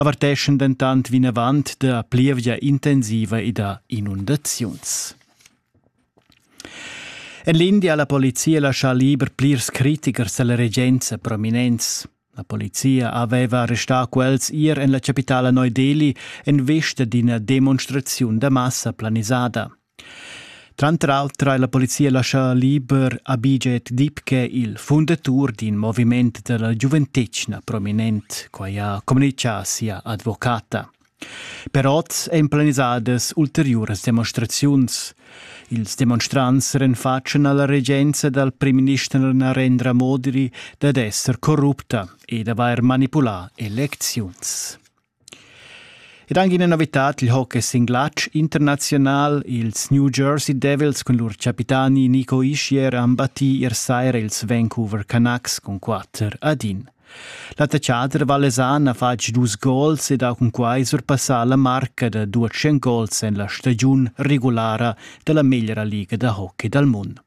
averteschan dentant vinavant da plievgia intensiva e da inundaziuns. En l'India ha la polizia laschà liber plirs critichers da la regenza prominents. La polizia aveva arrestà quels ier en la chapitala Neu Delhi en vesta d'ina demonstraziun da massa planisada. Tranter auter ha la polizia laschà liber Abhijit Dipke, il fundatur d'in moviment da la giuventetgna prominent. Quai ha communitgà sia advocata. Per oz èn planisadas ulteriuras demonstraziuns. Ils demonstrants renfatschan a la regenza dal primminister Narendra Modi dad esser corrupta e d'avair manipulà elecziuns. Ed anche ina novitad il hockey sin glatsch internaziunal. Ils New Jersey Devils cun lur capitani Nico Ischier han battì ier saira ils Vancouver Canucks cun quatter ad in. L'attaccader valesan ha fatg dus gols ed ha cunquai surpassà la marca da 200 gols en la stagiun regulara da la meglra liga da hockey dal mund.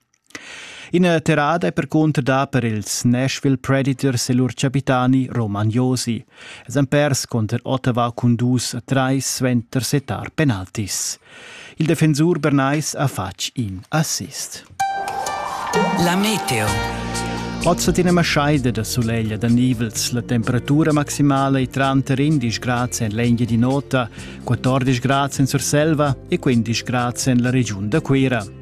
Ina terrada è percunter dà per ils Nashville Predators e lur chapitani Roman Josi. Els han pers cunter Ottawa cun dus a trais suenter settar penaltis. Il defensur bernais ha fatg in assist. La meteo. Oz hat ina maschaida da suleglia da nivels. La temperatura maximala è tranter 11 grad en l'Engia di Nota, 14 grad en Surselva e 15 grad en la regiun da Cuira.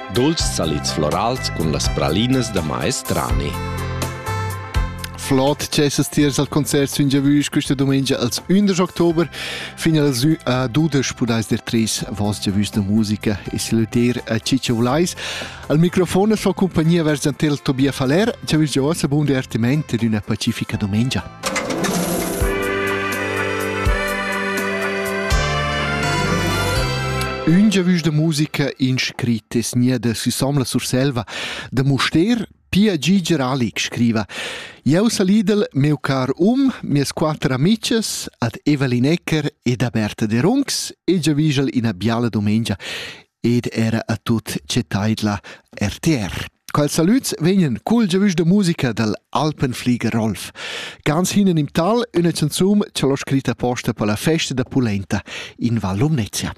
Dolç salids florals cun las pralinas da maestrani. Flot cessas tiers al concert sün Giavüsch questa domenica als 11 Oktober fin als a dudesch pudais der tres vos Giavüsch da musica e saluter a Ciccio Vlais. Al microfon fa compagnia vers Antel Tobia Faller. Giavüsch Gioasa, buon divertimento ed una pacifica domenica. Ün giavüsch da musica in scrit es nia da Susanne la Surselva da Mustér Pia Giger Alic scriva Jeu salidel meu car um, mias quatter amices, ad Evelin Ecker ed a Berta de Runx e giavigel ina biala domengia ed era a tut che taidla RTR. Quels salüds vegnan cul giavüsch da musica dal Alpenflieger Rolf. Ganz hinnen im Tal üna canzun cha l'ho scritta posta per la festa da pulenta in Val Lumnezia.